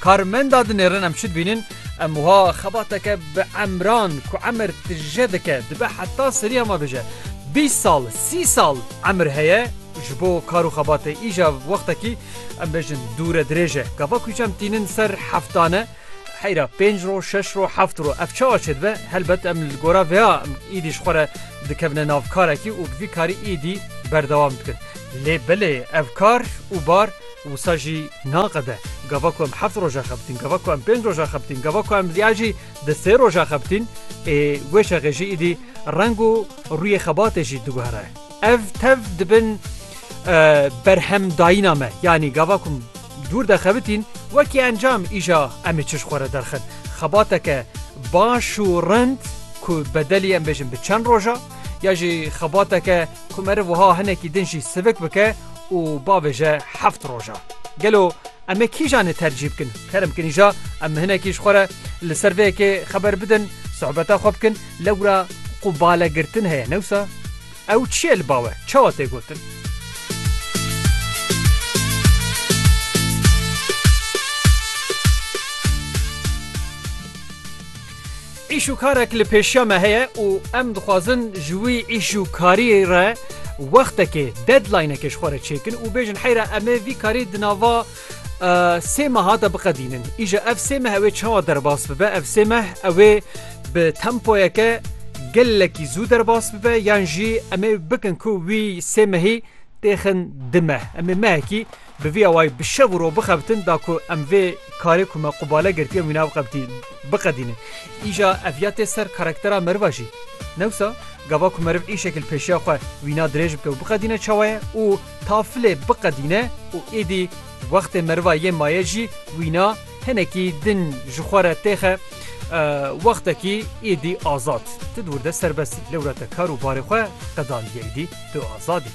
Karmenda dinêrin em çi dibînin? Em wiha xebateke bi emran ku emir tije dike dibe heta seriya me bije. Bîst sal, sî sal emir heye ji bo kar û xebatê îja wextekî em bêjin dûre dirêj e. Gava ku çem tînin ser heftan e. Heyra pênc roj, şeş roj, heft roj ev çawa çêdibe? Helbet em li gora vê ya îdî ji xwe re dikevine nav karekî û bi vî karî îdî berdewam dikin. Lê belê ev kar û bar Wisa jî naqede. Gava ku em heft roj e xebitîn, gava ku em pênc roj e xebitîn, gava ku em ya jî di sê roj e xebitîn, ê wê şexê jî îdî reng û rûyê xebatê jî diguhere. Ev tev dibin berhemdayîna me. Yanî gava ku em dûr de xebitîn, wekî encam îja em ê çi ji xwe re derxin? Xebateke baş û rind ku bedelî em bêjin bi çend roja ya jî xebateke, Ku meriv wiha hinekî din jî sivik bike û bavêje heft roj e. Gelo em ê kîjan ê tercîh bikin? Kerem kinî ja em hinekî ji xwe re li ser vê yekê xeber bidin, sohbeta xwe bikin, lewra ku bale girtin heye ne wisa? Ew çi ye li bawe? Çawa tê gotin? Îş û karek li pêşiya me heye û em dixwazin ji wî îş û karî re wextekê, deadlinekê ji xwe re çêkin û bêjin heyra em ê vî karî di nava sê meha de biqedînin. Îja ev sê meh ew ê çawa derbas bibe? Ev sê meh ew ê bi tempoyeke gelekî zû derbas bibe yan jî em ê bikin ku wî sê mehî têxin di meh? Em ê mehekî Bi vî awayî bi şev û roj bixebitin da ku em vê karê ku me qubale girtiye wî nabixebitî biqedînin. Îja ev ya tê ser karaktera meriva jî. Ne wisa? Gava ku meriv îşekî li pêşiya xwe wîna dirêj bike û biqedîne çawa ye û tafilê biqedîne û êdî wextê meriva yê maye jî wîna hinekî din ji xwe re têxe wextekî êdî azad. Tu di wir de serbest î. Lewra te kar û barê xwe qedandiye êdî tu azad î.